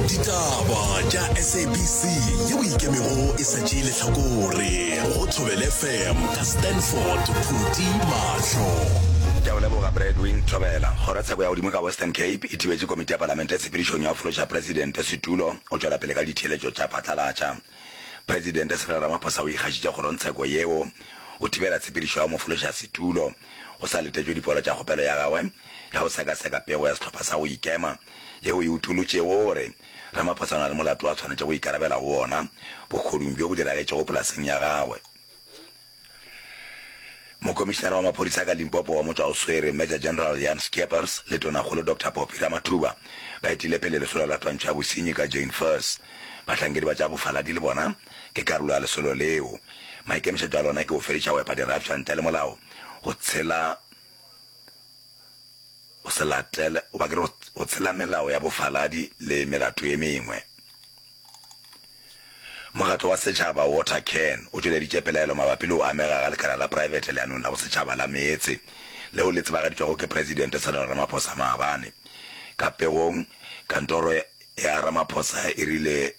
ditaba tša sabc yeo e ikemego e sa tšee lehlakore go thobele fm ka stanford phuti mahlo ke a o leboga bradwin thobela kgorotsheko ya godimo ka western cape e thibetše komiti ya palamente tshepedišong ya go fološa presidente setulo go tšwela pele ka ditheeletšo tša phatlalatša presidente cyril ramaphosa o ikgašitše kgorotsheko yeo go thibela tshepedišo ya go mo fološa setulo go sa letetšwe dipoelo tša kgopelo ya gagwe ka go sekaseka pego ya sehlopha sa go ikema yeo e utolotšego gore Ramaphosa o na le molato a swanetšego go ikarabela go wona bogodung bjo bo diragetšego polaseng ya gagwe. Mokomišenara wa Maphodisa ka Limpopo wa Motšwaoswere, Major General Jan Scheepers le Tonakgolo Doctor Poppy Ramathuba ba etile pele lesolo la twantsho ya bosenyi ka Jane Furse. Bahlankedi ba tša bofaladi le bona ke karolo ya lesolo leo. Maikemišetšo a lona ke go fediša go epa dirafša ntle le molao, go tshela o se latele, goba ke re go tshela melao ya bofaladi le melato ye mengwe. Mokgatlo wa Setšhaba Water Can o tšweleditše pelaelo mabapi le go amega ga lekala la praebete leanong la bosetšhaba la meetse leo le tsebagaditšwego ke Presidente Cyril Ramaphosa maabane. Ka pegong, kantoro ya Ramaphosa e rile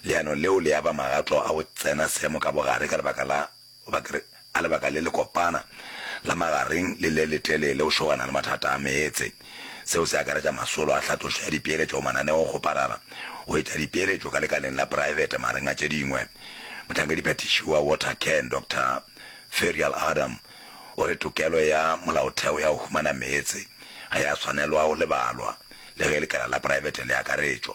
leano leo le aba magatlo a go tsena seemo ka bogare ka lebaka la Goba ke re, a lebaka le lekopana, la magareng le le letelele go šogana le mathata a meetse. Seo se akaretša masolo a hlatlošo ya dipeeletšo go mananeo go parara, go etša dipeeletšo ka lekaleng la praebete magareng a tše dingwe. Mohlankedi-phethiši wa Watercan, Doctor Ferial Adam, o re tokelo ya molaotheo ya go humana meetse ga ya swanelwa go lebalwa, le ge lekala la praebete le akaretšwa.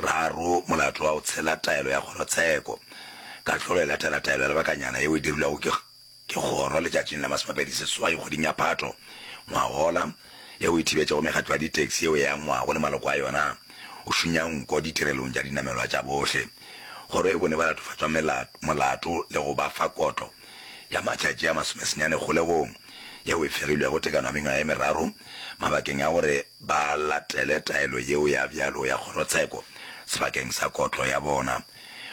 Raro, molato wa go tshela taelo ya kgorotsheko. Kahlolo e latela taelo ya lebakanyana yeo e dirilwego ke ke kgoro letšatšing la masomepedi seswai kgweding ya Phato ngwagola, yeo e thibetšego mekgatlo ya ditaxi yeo e angwago le maloko a yona go šunya nko ditirelong tša dinamelwa tša bohle. Kgoro e bone ba latofatšwa melato molato le go ba fa kotlo ya matšatši a masomesenyane kgolegong yeo e fegilwego tekano ya mengwaga e meraro mabakeng a gore ba latele taelo yeo ya bjalo ya kgorotsheko sebakeng sa kotlo ya bona.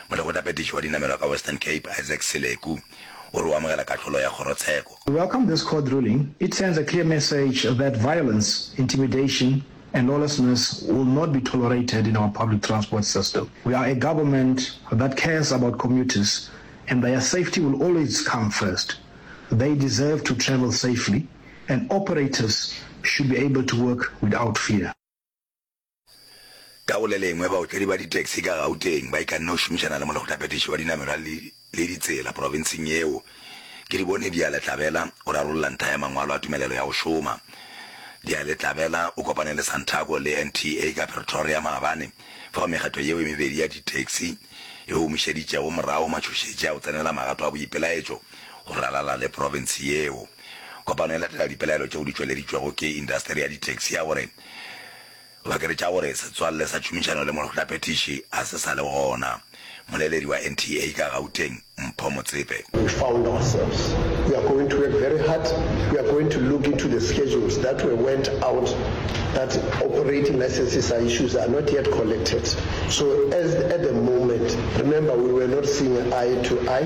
Molekgotlaphethiši wa dinamelwa ka Western Cape, Isaac Seleku, o re o amogela kahlolo ya kgorotsheko. We welcome this court ruling, it sends a clear message that violence, intimidation and lawlessness will not be tolerated in our public transport system. We are a government that cares about commuters and their safety will always come first. They deserve to travel safely. and operators should be able to work without fear. Ka go le lengwe, baotledi ba ditaxi ka Gauteng ba ikanne go šomišana le molekgothaphethiši wa dinamelwa le ditsela profenseng yeo, ke di bone Dialetlabela o rarolla ntha ya mangwalo a tumelelo ya go šoma. Dialetlabela o kopane le Santaco le NTA ka Pretoria maabane fao mekgatlo yeo e mebedi ya ditaxi e humišeditšego morago matšhošetši a go tsenela magato a boipelaetšo go ralala le profense yeo. Kopano e latela dipelaelo tšeo di tšweleditšwego ke indasteri ya ditaxi ya gore go akaretša gore setswalle sa tšhomišano le mohlaphethiši ga se sa le gona. Moleledi wa NTA ka Gauteng, Mpho Motsepe. We found ourselves, we are going to work very hard, we are going to look into the schedules that were went out that operating licenses are issues are not yet collected. So as at the moment, remember we were not seeing eye to eye,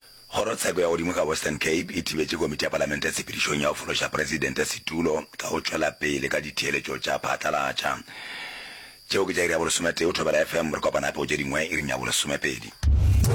Kgorotsheko ya godimo ka Western Cape e thibetše Komiti ya Palamente tshepedišong ya go fološa Presidente setulo ka go tšwela pele ka ditheeletšo tša phatlalatša. Tšeo ke tša iri ya bolesome-tee go thobela FM. Re kopana gape go tše dingwe iring ya bolesome-pedi.